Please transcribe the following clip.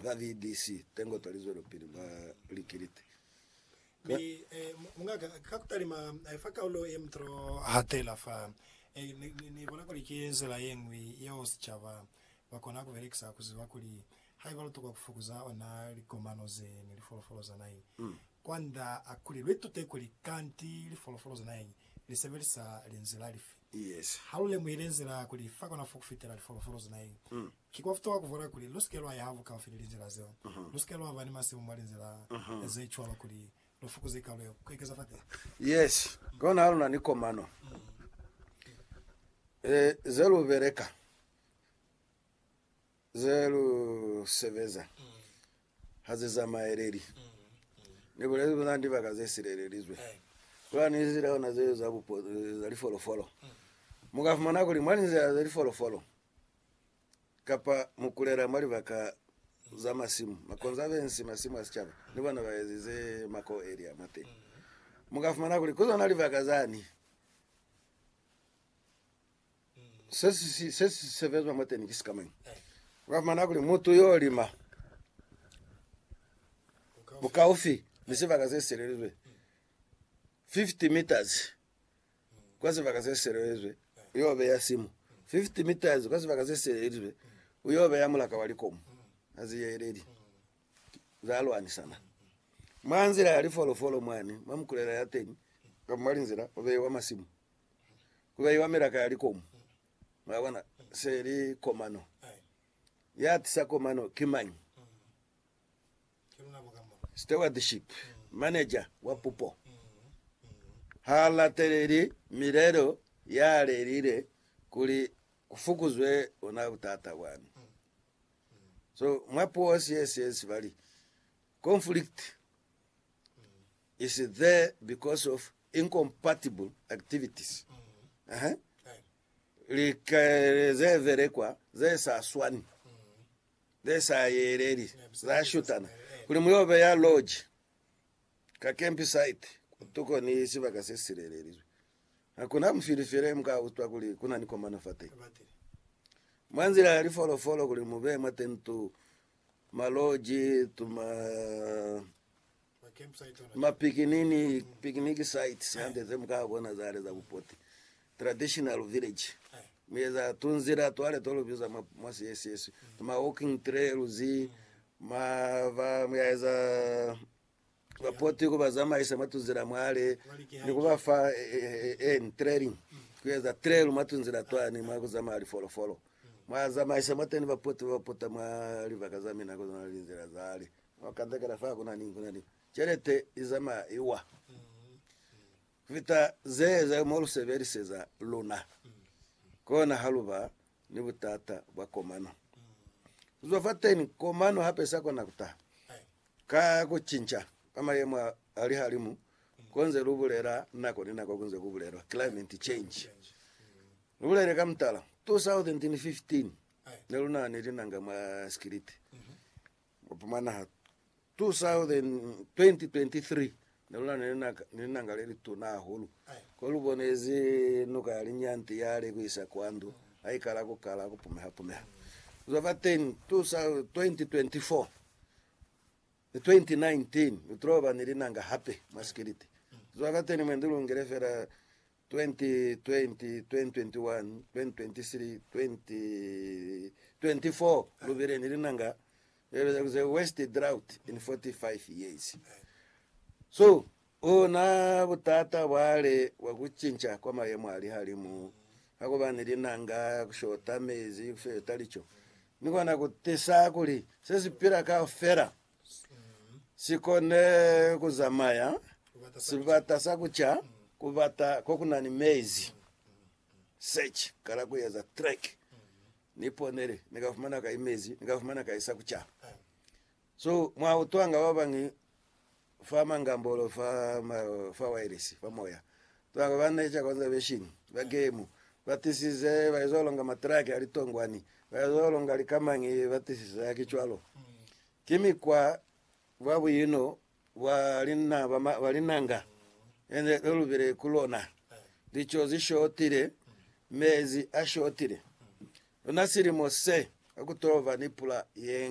ba VDC Tengota li zwelopili mwa likiliti la. Mi, eh, mungaka, ka kutalima, eh, fa kaulo ye mutolo hatela fa, eh, ni, ni, ni bona kuli ki nzila yeñwi yeo sicaba ba kona kubelekisa kuziba kuli haiba lutokwa kufukuza ona likomano ze ni lifolofolo za naheñi kwanda a kuli luitute kuli kanti lifolofolo za naheñi li sebelisa linzila lifi. Yes. Ha lu lemuhile nzila kuli fa kona fo kufitela lifolofolo za naheñi, Ki kwa futuha ku bona kuli lu si ke lwa ya habuhaufi ni linzila zeo. Lu si ke lwa ba ni masimu mwa linzila ze cwalo kuli lu fukuze kalo ya ku ekeza fatehe. Yes, kona ha lu na ni komano ze lu beleka, ze lu sebeza, ha ze zamaeleli. Ni bulezi kuli na ni libaka ze silelelizwe. Ku na ni linzila ona zeo za lifolofolo. Mu ka fumana kuli mwa linzila za lifolofolo, kapa mu kulela mwa libaka za masimu, makonzo a bensi masimu a sicaba ni bona ba ezize mako elia mwa teñi. Mu ka fumana kuli ku zona libaka zani se si se si sebezwa mwa teñi ki si ka mañi. U ka fumana kuli mutu yo lima bukaufi ni sibaka se si selelizwe 50 meters kwa sibaka se sielelizwe, u yo beya simu 50 meters kwa sibaka se sielelizwe, u yo beya mulaka wa likomu ha zi yeleli za lwanisana mwa nzila ya lifolofolo mwani mwa mikulela ya teni, kamba mwa linzila ku beiwa masimu, ku beiwa milaka ya likomu. Mwabona, se li komano. Yatisa komano ki mañi? Stewardship manager wa pupo ha lateleli milelo ya lelile kuli ku fukuzwe ona butata bwani. So mwa puo sies yes bali conflict is there because of incompatible activities. Ehe. Lika ze velekwa ze sa swani. Ze sa yeleli za shutana kuli mu yo beya loji ka campsite kotuko ni sibaka se silelelizwe. Ha ku na mufili fela ye mu ka utwa kuli ku na ni komano fateni. Mwa nzila ya lifolofolo kuli mu beye mwateni tu maloji, tu ma ma picnic sites hande ze mu ka bona zale za bupoti, traditional village, mu eza tunzila twale to lu biza mwa siesiswe ma walking trails, ma ba mu ya eza bapoti ku ba zamaisa mwa tunzila mwale ni ku ba fa training ku eza trail mwa tunzila twani mwa ku zamaya lifolofolo, mwa zamaisa mwateni bapoti ba pota mwa libaka za mina ko zwana linzila zale. Mwa kandakanda fa kuna ni, kuna ni celete izamaya iwa kufita ze, ze mo lu sebeliseza luna, kona ha luba ni butata bwa komano. Kuzwa fateni, komano hape isa kona kuta ka kucinca kwa mayemo a lihalimu konze lu bulela nako ni nako kunze ku bulelwa climate change. Lu bulele ka mutala, 2015 neluna ni linanga mwa sikiliti, 2023, ne lu na ni linanga le lituna hahulu ko lu bonezi nuka ya Linyanti ya li ku isa kwa ndu ha ikala ku kala ku pumeha-pumeha. Ku zwa fa teñi, 2024 ni 2019 lu tilo ba ni linanga hape mwa sikiliti. Ku zwa fa teñi mwendi lu ngile fela 2020, 2021, 2023, 2024 lubile ni linanga the worst drought in 45 years so una butata bwale bwa kucinca kwa mayemo a lihalimu hakuba ni linanga kushota mezi kushota lico ni kona kutisa kuli sesipila kaufela si kone ku zamaya sibata sa ku ca ku bata ko ku na ni mezi. Search, kala ku eza track. Ni ponele, ni ka fumana kai mezi, ni ka fumana kai sa ku ca. So, mwa utwanga ba bañi fa mangambolo fa, ma, fa wireless, fa moya. Ba ba na ica konzaveshini ba gemu ba tisize ba izwa longa matraki a litongwani, ba izwa longa likamañi ba tisize haki cwalo. Ki mikwa bwa buino bwa lina ba ma, ba linanga e ne lu lubile ku lona. Lico zi shotile, mezi a shotile. Luna silimo se, ha ku to ba ni pula ye